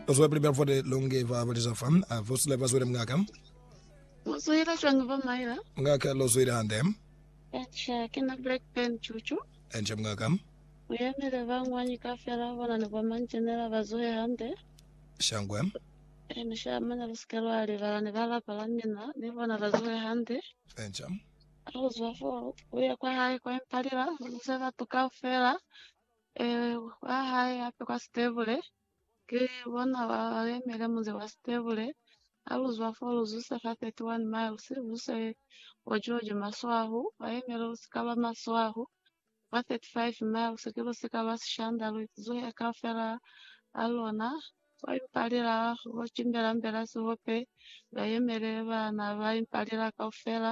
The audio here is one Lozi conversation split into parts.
Bazwale pele ba fwate longe ba baleza fa. Apostle bazwele mungaka. Mu zwile cwang bo Myra? Mungaka, Lo zwile hande. Eca, ki na Blackburn cucu. Eca, mungaka. Mu yemele ba ñwañi kafela bona ni bo manjenela ba zwe hande. Shangwe. E mi sha mane lu sike lwa libala ni ba lapa la mina ni bona ba zwe hande. Eca. Ha lu zwa fo, lu ye kwa hae kwa Impalila, lu bize batu kaufela. Ee, ba hae hape kwa Stebule. Ki bona ba lemele munzi wa Stebule. Ha lu zwa fo, lu zuse fa 31 miles, lu se bo George Maswahu, ba yemele lu sika lwa Maswahu. Kwa 35 miles, ki lu sika lwa Sishanda, lu zuhe kaufela ha lona. Kwa impalila ho cimbela mbela sihope, ba yemele ba na ba impalila kaufela,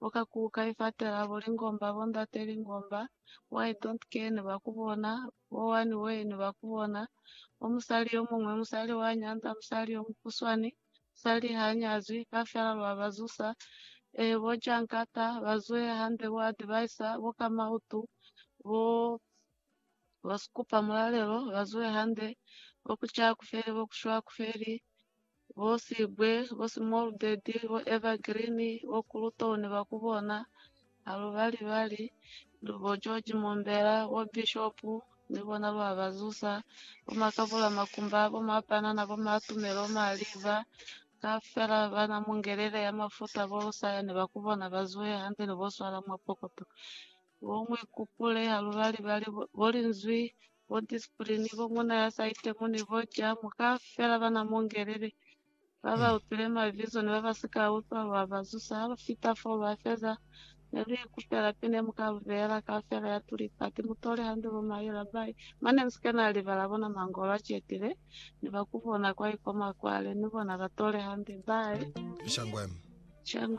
bo ka kuka ifatela bo lingomba bo ndate lingomba bo I don't care ni ba kubona bo one way ni ba kubona bo musali yo mungwe musali wa nyanda musali yo mukuswani musali ha nyazwi ka fela lwa ba zusa eh bo jankata ba zwe hande bo advise bo ka mautu bo bo skupa mulalelo ba zwe hande bo kucha kufeli bo kushwa kufeli bo Sigwe, bo Small Daddy, bo Evergreen, bo Kulutoni ba ku bona ha lu ba libali, ni bo George Mombela, bo Bishop ni bona lwa ba zusa, bo Makabula Makumba, bo Mapanana, bo Matumelo Maliva, kaufela ba na mungelele ya mafuta bo Lusaya ni ba ku bona ba zuhe hande ni bo swala mwa pokoto. Bo mu ikupule ha lu balibali, bo linzwi, bo ndisiplini, bo muna ya sa itemuni, bo jamu, kaufela ba na mu ngelele, ba ba upile mabizo ni ba ba si ka utwa, lwa ba zusa. Ha lu fita fo, lwa feza, ne lu ikupela pi ne mu ka lu beela kaufela ya tulipa, ti mutoli hande bo Mahi Labai, mane mu si ke na libala bona mangolo a cetile, ni ba ku bona kwa ikoma kwale, ni bona ba tole hande. Bye. Shangwem.